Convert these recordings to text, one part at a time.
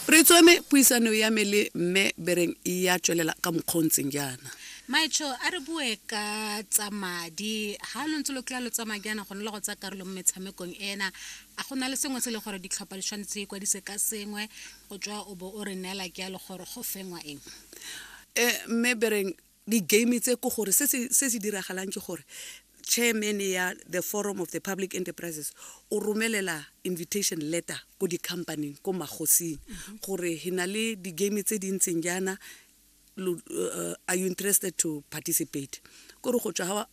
re tsweme puisano ya me le mme bereng ya tswelela ka mokgwa o ntseng jaana maetsho a re bue ka tsa madi ga lo ntse lo kry-a lo tsamaya jaana gone le go tsaya karolo mo metshamekong ena a go na le sengwe se e le gore ditlhopha di tshwanetse di ikwadise ka sengwe go tswa o bo o re neela ke ya le gore go fengwa eng um mme bereng di-game tse ko gore se se diragalang ke gore chairman ya the forum of the public enterprises o romelela invitation letter ko di-companyng ko magosing mhm. gore he na le di-game tse di ntseng jaana uh, are you interested to participate kore go tswa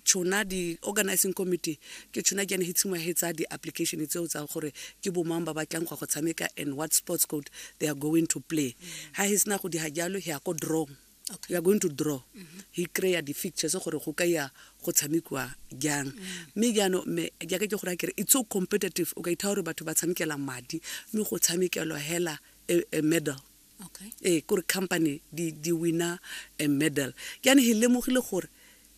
tšhona di-organizing committee ke tšhona ke ane he tshimo he tsa di-application tseo tsa gore ke bomang ba batlang go go tshameka and what sports code they are going to play ga mm. he sena go diga jalo he ya ko drong Okay. you are going to draw he kry-a di-fictures gore go ka ya go tshamekiwa jang mme jaanong mme jaaka ke gore a kere it's so competitive o ka ithaa gore batho ba tshamekela madi mme go tshamekelwa hela a, a medal okay ee kore company di, di winner a medal jaanong he lemogile gore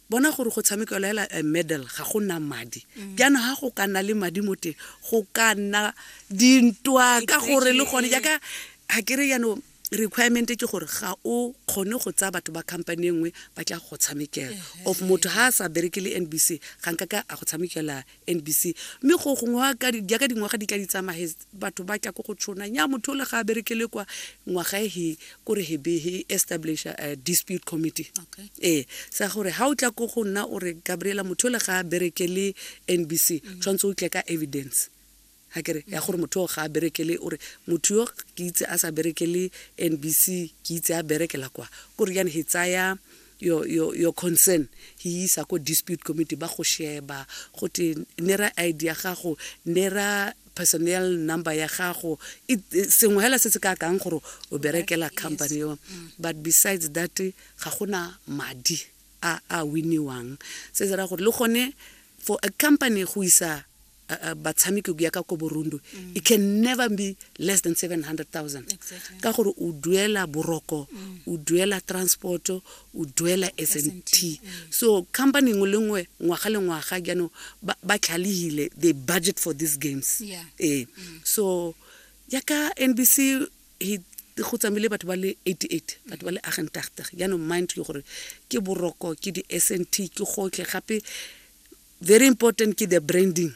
Bona gore go tshamekelwa hela a medal ga go na madi. Jaanong ha go ka nna le madi mo teng go ka nna dintwa ka gore le gone jaaka ga ke re jaanong requirement ke gore ga o kgone go tsaya batho ba company e nngwe ba tla go tshamekela of motho ha a sa bereke le nbc ga nka ka a go tshamekela NBC mme go gongwe jaaka dingwaga di tla di tsamaye batho ba tla ko go tshona nya motho o le ga a berekele kwa ngwaga e he kore he be he establish a eh, dispute committee okay. ee sa gore ga o tla ko go nna o re gabriela motho o le ga a berekele NBC mm. tshwanetse o tle ka evidence A ke re ya gore motho o ga a berekele, o re motho yo ke itse a sa berekele NBC, ke itse a berekela kwa. Ko re jane he tsaya your, your, your concern he isa ko dispute committee, ba go sheba go te nera ID ya gago, nera personnel number ya gago, sengwe hela se se ka akang gore o berekela company eo. Mm. But besides that ga gona madi a a winiwang se se ra gore le gone for a company go isa batshameki go ya ka ko borundo mm. it can never be less than 700000 exactly. ka gore o duela boroko mm. o duela transport o duela s n t mm. so company nngwe le nngwe ngwaga le ngwaga jaanong ba tlhalegile they budget for these games yeah. ee mm. so yaka nbc go tsamaile batho ba le 88 batho ba le agentagtag jaanong mind ke gore ke boroko ke di s n t ke gotlhe gape very important ke the branding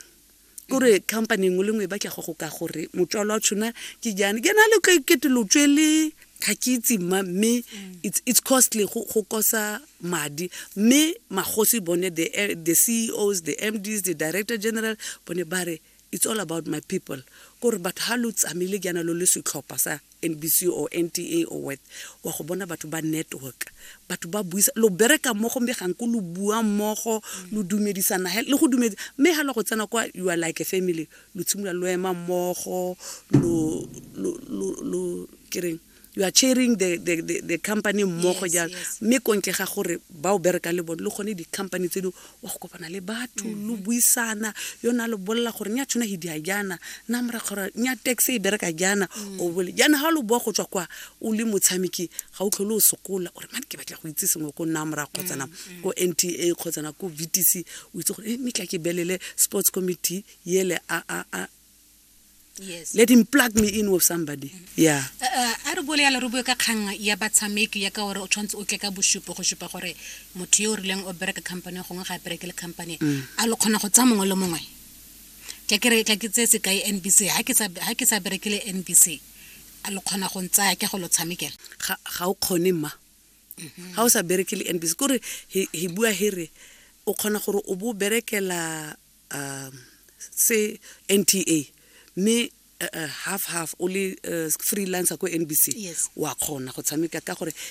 kore company nngwe le nngwe e batla go go ka gore motswalo wa tshona ke jane ke na le kete lo tswele ga ke itse mma mme it's costly go kosa madi mme magosi bone the eh, ceos the mds the director general bone ba re It's all about my people kore batho ha lo tsamaile jaana lo le setlhopha sa NBC or NTA or what wa go bona batho ba network batho ba buisa lo bereka mmogo mme ganko lo bua mmogo lo dumedisana le go dumedi mme ha lo go tsena kwa you are like a family lo tshimolola lo ema mmogo lo lo lo kereng you are chairing the, the, the, the company mmogo jang mme kontle ga gore ba o bereka le bone le gone di-company tse di wa go kopana le batho lo mm-hmm. buisana yo ne a lo bolela gore nya tshwana he dia jaana nna morakgora nya tax e bereka jaana mm. o bole jaana ga lo boa go tswa kwa o le motshameki ga o tlhole o sokola gore mane ke batla go itse sengwe ko nna morago kgotsana mm, mm. ko n t a kgotsana ko v t c o itse gore e eh, mme tla ke belele sports committee ele a yes let him plug me in with somebody yeah Uh, uh, a re bole yalo re bue ka kgang ya batshameki ya ka gore o tshwanetse o tle ka bosupo go supa gore motho yo o rileng o bereka company gongwe ga a bereke le company Mm. a lo kgona go tsaya mongwe le mongwe ka ke re ka ke tseye sekai nbc ha ke sa- ha ke sa bereke le nbc a lo kgona go ntsaya ke go lo tshamekela ga ga o kgone ma ga o sa bereke le nbc kore he he bua here o kgona gore o bo o berekela um se NTA mme uh, uh, half half o le uh, freelancer ko NBC yes. wa kgona go tshameka ka gore